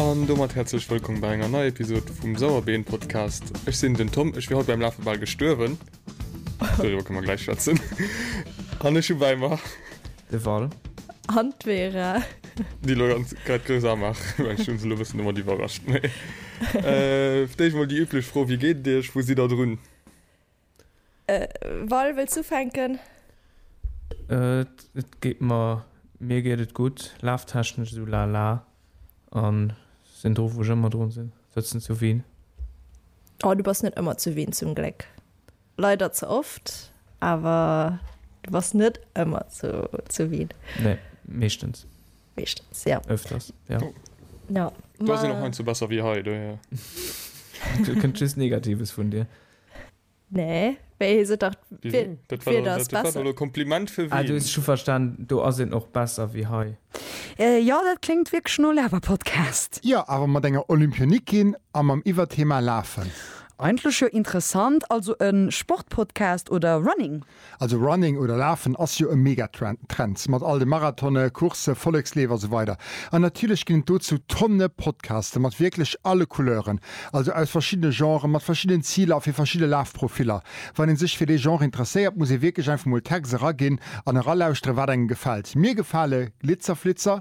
An domat häerzlech wëllkomm bei enger neier Episod vum Sauerbeen Podcast. Ech sinn den Tom, ech wier haut beim Lafe bal gestuerwen. Doriwwer kënne mer gläich schwätzen. An ech hu bei mer De Val. An d'Vera. déi lo ganz grad grouss amach. Well ech hunn se lo e bëssen domat iwwerrascht. Mee, äh, fir d'éischt emol déi üblech Fro, Wéi geet et Iech? Wou sidd Der drun? Val, wëlls du fänken? Et geet mer, mir geet et gutt, laftechnesch esou lala a sinn dru wou ech ëmmer drun sinn, sëtzen zu Wien. Oh, du bass net ëmmer zu Wien, zum Gléck. Leider ze oft, awer du bass net ëmmer zu Wien. Nee, meeschtens. Meeschtens, jo. Öfters, jo. Jo. Do sinn och heiansdo besser wéi hei, dohier. Do kënnt just Negatives vun dir. Nee, wéi heescht et dach? Wien? Dat war dach dat war dach lo Kompliment fir wien? Ah, du hues scho verstan, do ass een och besser wéi hei. Jo, dat kléngt wierklech no Laberpodcast. Jo, awer mat enger Olympionikin a mam Iwwerthema Lafen. Eigentlech jo interessant, also e Sportpodcast oder Running? Also Running oder Lafen ass jo e Megatrend, Trends mat all de Marathone, Coursse, Volleksleef a sou weider. An natierlech ginn et dozou Tonne Podcaste mat wierklech alle Couleuren, also aus verschiddene Genren, mat verschiddenen Ziler a fir verschidde Lafprofiller. Wann ee sech fir dee Genre interesséiert, muss ee wierklech einfach mol d'Hex eraginn an eralauschteren, wat engem gefält. Mir gefale Glitzerflitzer.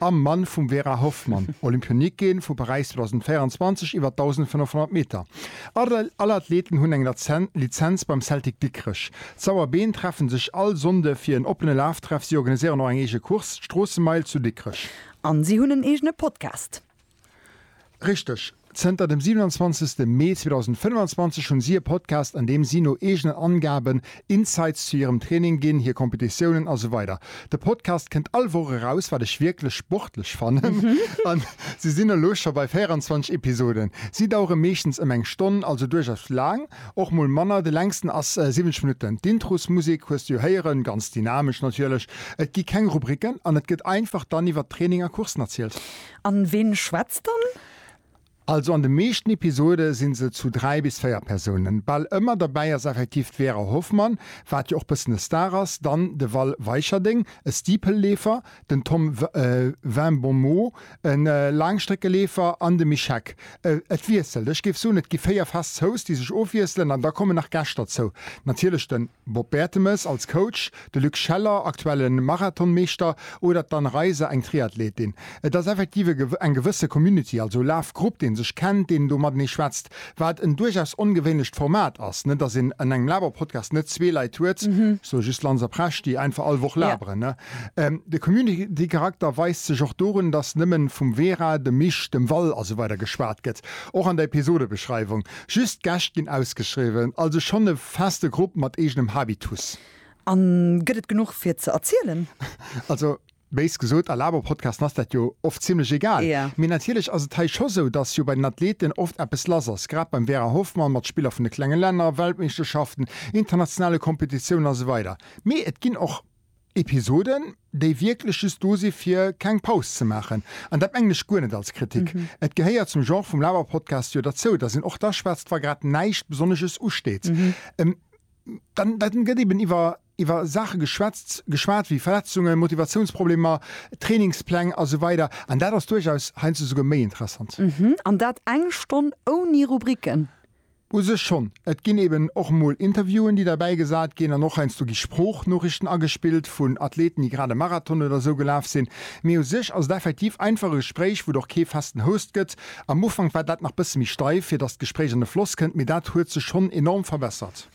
am Mann vum Vera Hoffmann, Olympionikin vu Paräis 2024 iwwer 1.500 Meter. All Athleten hunn eng Lizenz beim Celtic Dikrech. D'Sauerbeen treffen sech all Sonnde fir en oppene Laftreff. Si organiséieren och eng eege Course, d'Stroossemeil zu Dikrech. An si hunn en eegene Podcast. Richteg. Zënter dem 27 Mee 2025 hunn si e Podcast an deem si no eegenen Angaben Insights zu hirem Training ginn, hir Competitiounen a sou weider. De Podcast kënnt all Woch eraus, wat ech wierklech sportlech fannen an si sinn elo scho bei 24 Episoden. Si dauere meeschtens ëm eng Stonn, also duerchaus laang, och mol manner, de längsten ass 70 Minutten. D'Introsmusek hues de jo héieren, ganz dynamesch natierlech. Et gi keng Rubriken an et gëtt einfach dann iwwert Training a Coursen erzielt. An ween schwätzt dann? Also an de meeschten Episode sinn se zu 3 bis 4 Persounen. Bal ëmmer derbäi ass effektiv d'Vera Hoffmann, wat jo och bëssen e Star ass, dann de Val Weicherdeng, e Steepleleefer, den Tom Vimbomeau, e Laangstreckeleefer, an de Mischek. Et wiesselt, ech géif soen et gi 4 fest Zooss, déi sech ofwiesselen, an da kommen nach Gäscht derzou, natierlech den. Bob Bertemes als Coach, de Luc Scheller, aktuelle Marathonmeeschter, oder d'Anne Reiser, eng Triathletin. Et ass effektiv eng gewësse Community, also Lafgrupp, dee sech kennt, deen do matenee schwätzt. Wat en duerchaus ongewéinlecht Format ass, ne? Datt een an engem Laber-Podcast net zwee Leit huet, ech soe just Lanz a Presch, déi einfach all Woch laberen, ne? De Community-Charakter weist sech och dorun, datt nëmmen vum Vera, dem Misch, dem Val, a sou weider geschwat gëtt, och an der Episodebeschreiwung. Just d'Gäscht ginn ausgeschriwwen, also schonn e feste Grupp mat eegenem Habitus. An gëtt et genuch fir ze erzielen? Also, béis gesot, a Laber-Podcasten ass dat jo oft zimlech egal. Mee natierlech ass et hei scho sou, datt jo bei den Athleten oft eppes lass ass, grad beim Vera Hoffmann mat Spiller vun de klenge Länner, Weltmeeschterschaften, internationale Kompetitiounen a sou weider. Mee et ginn och. Episoden, déi wierklech just do si fir keng Paus ze maachen. An dat mengen ech guer net als Kritik. Et gehéiert zum Genre vum Laberpodcast jo derzou, datt een och da schwätzt, wa grad näischt Besonnesches usteet. Dann gëtt eben iwwer iwwer Saache geschwätzt, geschwat wéi Verletzungen, Motivatiounsproblemer, Trainingspläng a sou weider. An dat ass duerchaus heiansdo souguer méi interessant. An dat eng Stonn ouni Rubriken? U sech schonn. Et ginn eben och mol Interviewen, déi derbäi gesat ginn, an och heiansdo gi Sproochnoriichten agespillt vun Athleten, déi grad e Marathon oder esou gelaf sinn. Mee u sech ass et effektiv einfach e Gespréich, wou et och kee festen Host gëtt. Am Ufank war dat nach bësse méi steif, fir datt d'Gespréich an de Floss kënnt, mee dat huet sech schonn enorm verbessert.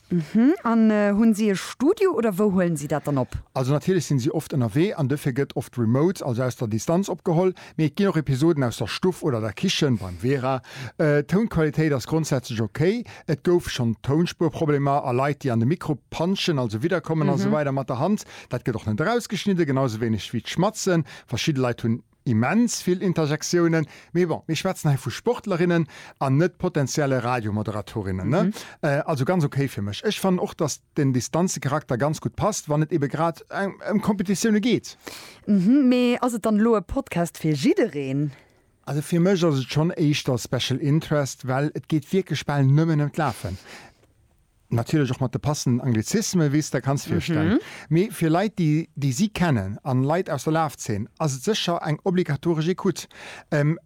An hunn si e Studio oder wou huelen si dat dann op? Also natierlech sinn si oft ënnerwee an dofir gëtt oft remote, also aus der Distanz, opgeholl. Mee et ginn och Episoden aus der Stuff oder der Kichen beim Vera. D'Tounqualitéit ass grondsätzlech ok. Et gouf schonn Tounspuerproblemer a Leit déi an de Mikro panschen, also widderkommen an esou weider mat der Hand. Dat gëtt och net erausgeschnidden, genau sou wéineg wéi d'Schmatzen. Verschidde Leit hunn immens vill Interjektiounen. Mee bon, mir schwätzen hei vu Sportlerinnen an net potenzielle Radiomoderatorinnen, ne? Also ganz ok fir mech. Ech fannen och, dass. den Distanzecharakter ganz gutt passt, wann et ebe grad ëm Kompetitioune geet. Hm, mee ass et dann elo e Podcast fir jiddereen? Also fir mech ass et schonn éischter Special Interest, well et geet wierklech bal nëmmen ëm d'Lafen. Natierlech och mat de passenden Anglizismen, wéi s de der kanns virstellen. Mee fir Leit, déi déi si kennen, an Leit aus der Lafzeen, ass et sécher eng obligatoresch Ecoute.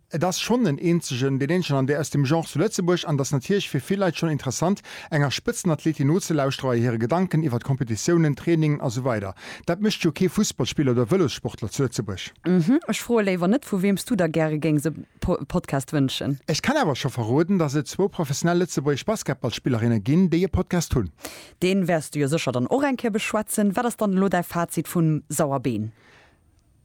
Et ass schonn den eenzegen, deen eenzegen an der aus dem Genre zu Lëtzebuerg an et ass natierlech fir vill Leit schonn interessant, enger Spëtzenathletin nozelauschteren bei hire Gedanken iwwert Kompetitiounen, Trainingen a sou weider. Dat mécht jo kee Fussballspiller oder Vëlossportler zu Lëtzebuerg. Ech froe léiwer net, vu weems du der gäre géings e Podcast wënschen. Ech kann awer scho verroden, dass et zwou professionell lëtzebuergesch Basketballspillerinne ginn, déi e Podcast hunn. Deen wäers du jo sécher dann och eng Kéier beschwätzen. Wat ass dann elo däi Fazit vum Sauerbeen?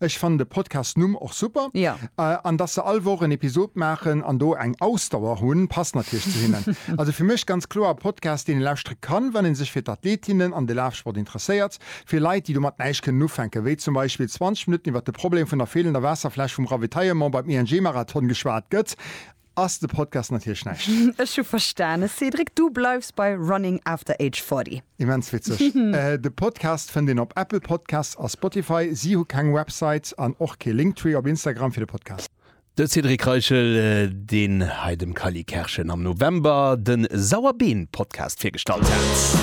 Ech fannen de Podcast Numm och super an dass se all Woch en Episod maachen an do eng Ausdauer hunn passt natierlech zu hinnen. Also fir mech ganz kloer e Podcast deen ee lauschtere kann wann ee sech fir d'Athletinnen an de Lafsport interesséiert. Fir Leit déi domat näischt kënnen ufänken, wéi zum Beispill 20 Minutten iwwert de Problem vun der feelender Waasserfläsch vum Ravitaillement beim ING-Marathon geschwat gëtt, Ass de Podcast natierlech näischt. Ech hu verstanen, Cédric, du bleifs bei Running After Age 40. Immens witzeg. De Podcast fënnt een op Apple Podcasts a Spotify. Si hu keng Website an och kee Linktree op Instagram fir de Podcast. De Cédric Reichel, deen hei dem Kally Kerschen am November de Sauerbeen-Podcast virgestallt hat.